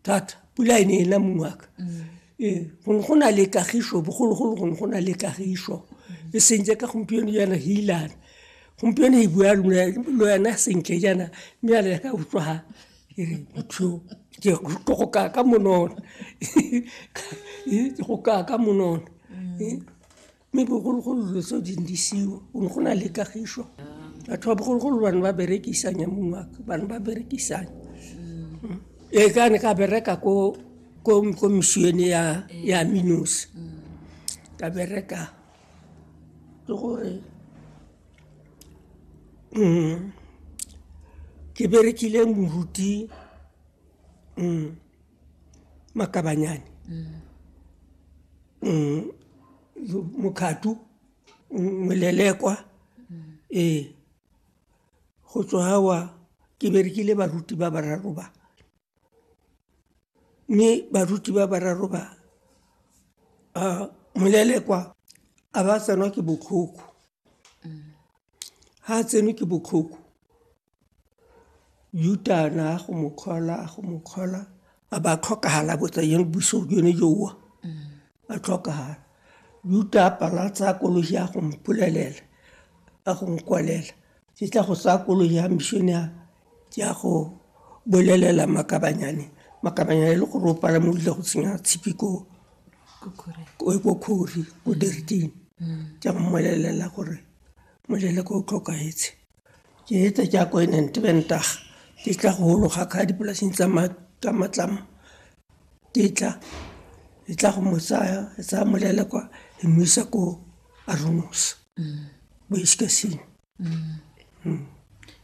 thata pula e ne e na mongwaka ee gone go na le kagiso bogologolo gone go na le kagiso e seng jaaka gompieno jaana ge ilana gompieno e bua lo yana sentle jaana mme yana ya ka utlwa ga ke re motho ke go kaya ka monona ke go kaya ka monona mme bogologolo dilo tseo di ne di seyo go ne go na le kagišo batho ba bogologolo bane ba berekisanya mongwaka bane ba berekisanya mm. e ka ne ka bereka ko ko misione ya ya minos ka bereka ke gore mm, ke berekile moruti mm. makabanyane um mokgatu molelekwa ee go tswa gawa ke berekile baruti ba bararo ba mme baruti ba bararo ba um molelekwa a ba tsenwa ke botlhoko ga tsenwe ke botlhoko U-turn-a go mo call-a go mo call-a a ba tlhokagala botsa yone buso yone yowa a tlhokagala uta a pala tsa koloi ya go mpolelela a go nkwalela ke tla go tsaya koloi ya mission ya ke ya go bolelela makabanyane makabanyane e le gore o pala mo ile go tsenya tshipi ko ko khori ko diriting ke a mmolellela gore molele ko o tlhokahetse Ke etsa ke akoinente be ntaga ke tla go ologa ka dipolaseng tsa matlamo ke tla e tla go mo tsaya e tsaya molele kwa e mo isa ko arumos bo iskasing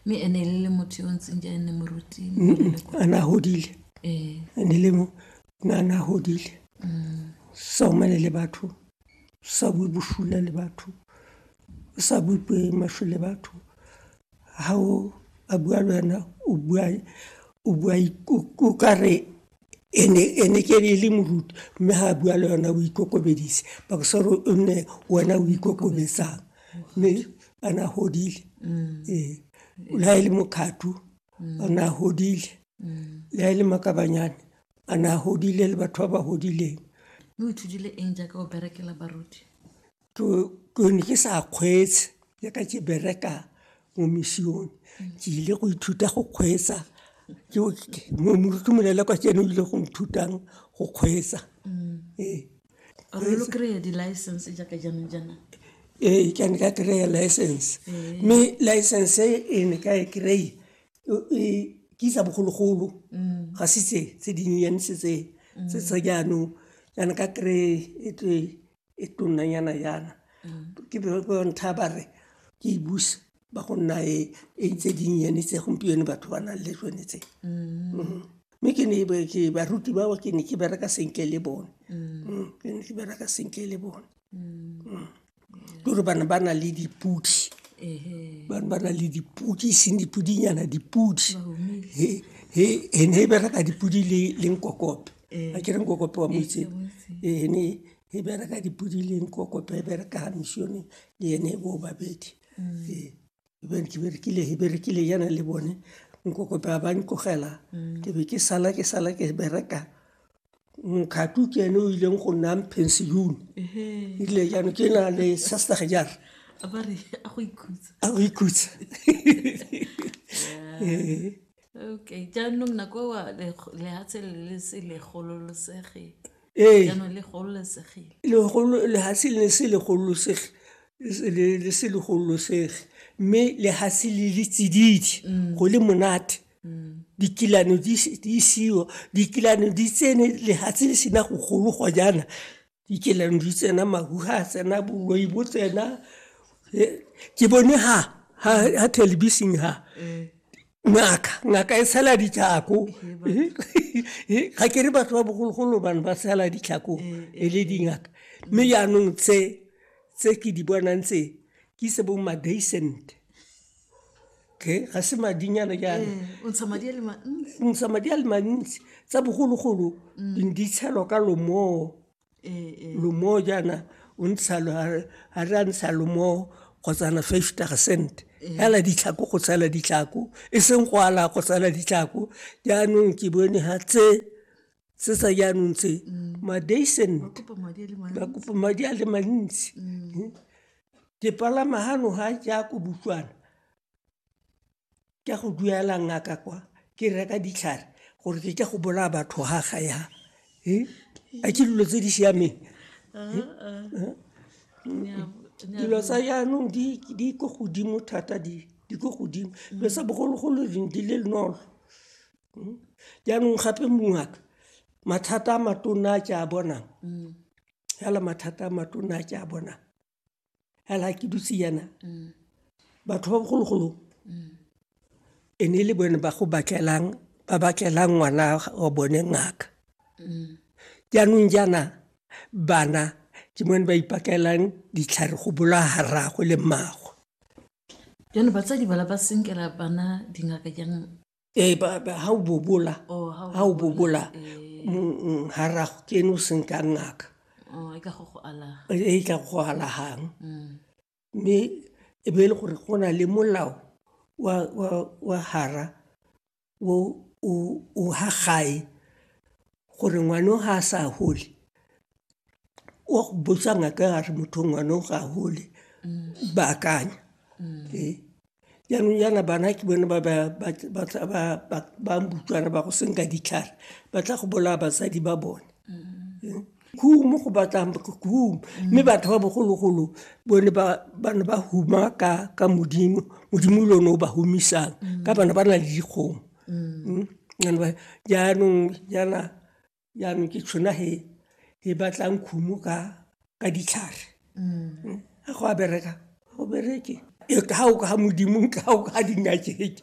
mme ene e le motho yo ntseng ja ene moruti a ne a godile ene le mo na ne a godile sa omane le batho sa bue bosula le batho O sa bue puo e maswe le batho, ha o a bua le wena o bua o bua o ka re ene ene ke e le moruti mme ha bua le wena o ikokobeditse o nne wena o ikokobetsang mme a na godile ee. Le ha e le mokgatlho a na godile le ha e le makabanyane a na godile le batho ba ba godileng. Mme o ithutile eng jaaka o berekela baruti? ke ne ke sa kgweetse ya ka ke bereka mo misione ke ile go ithuta go kgweetsa moruti molela kwa ke ene o ile go nthutang go kgweetsa mm. ee ee ke ne ka kry-a license mme license e ne ka e kry ke isa bogologolo mm. ga se tse tse dinyenyane se tse mm. tse tsa jaanong kana ka kry e tle e tonnanyana yana mm. ke bontha ba re ke e busa ba go nna e, e ntse dinnyane tse gompieno batho ba nang le tsone tse mm. mm. mme ke ne ke baruti bao ke ne ke bereka senke le bone ke ne ke bereka senke le bone ke gore bana ba na le dipudi bana ba na le dipudi seng dipudinyana dipudi he ne e bereka dipudi le nkokope a ke reng kokope wa moitseng ee ne e bereka dipodileng kokope e bereka gamišone le ene e boo babedi ee e bere ke berekile e berekile yana le bone nkokope a ba ntlogela ke be ke sala ke sala ke bereka nkgatu ke ene o ileng go nna pension ile jano ke na le sastage jare a go ikhutsa ee Okay, jaanong nako wa lehatshe le le se le gololosegile. Ee. Jaanong le gololosegile. Lehatshe le se le gololosegile le se le gololosege mme lehatshe le le tsididi mm. go le monate mm. dikilano di isiwa dikilano di tsene lehatshe le sena go gologwa jaana dikelandu tsena mahu ha tsena boloi bo tsena ke bone ha ha ha television ha eh. ngaka ngaka e tshela ditlhako ga ke re batho ba bogologolo bane ba tshela ditlhako e le dingaka mme jaanong tse tse ke di bonang tse ke se bo madaisent okay ga se madinyana jaana o ntsha madi a le mantsi o ntsha madi a le mantsi tsa bogologolo di ne di tshelwa ka lomoo lomoo jaana o ntsha ga re a ntsha lomoo kgotsana fifty percent fela ditlhako go tshela ditlhako e seng go ala go tshela ditlhako jaanong ke bone ga tse sesa jaanong tse madeisen ba kopa madi a le mantsi mm. ke palama gano ga ke ya ko butlwana ke go duela ngaka kwa ke reka ditlhare gore ke ke go bolaya batho ga ga ya a ke dilo tse di siameng dilo tsa jaanong di ko godimo thata di ko godimo dilo sa bogologolo di le nolo jaanong gape mongaka mathata a matona a ke a bonang fela mathata a matona a ke a bonang fela ke dutse yana batho ba bogologolo e ne e le bone ba go batlelang ba batlelang ngwana wa bone ngaka jaanong jaana bana ke mone ba ipakelelang ditlhare go bola haragwe le mmaago jaanong batsadi bala ba senkela bana dingaka jang ee ba- ba- ha o bobola Oh, ha o ha o bobola mm, mm, ha ra ke ene o seng ka ngaka Oh, e ka go go alaga e tla go alagang mme e be e le gore go na le molao wa, wa, wa hara o o o ha gae gore ngwano ga a sa gole o botsa ngaka a re motho ngwano ga a gole ba akanya ee jaanong jaana bana ke bone ba bambutswana ba go senka ditlhare ba tla go bolaya basadi ba bone humo go batlang hum mme batho ba bogologolo bone ba ne ba huma ka modimo modimo le one o ba humisang ka bana ba na le dikgomo jaanong jaana jaanong ke tšhona he e batlang khumo ka ka ditlhare a go a bereka go bereke ga o ka modimo ga o ka dingakeng .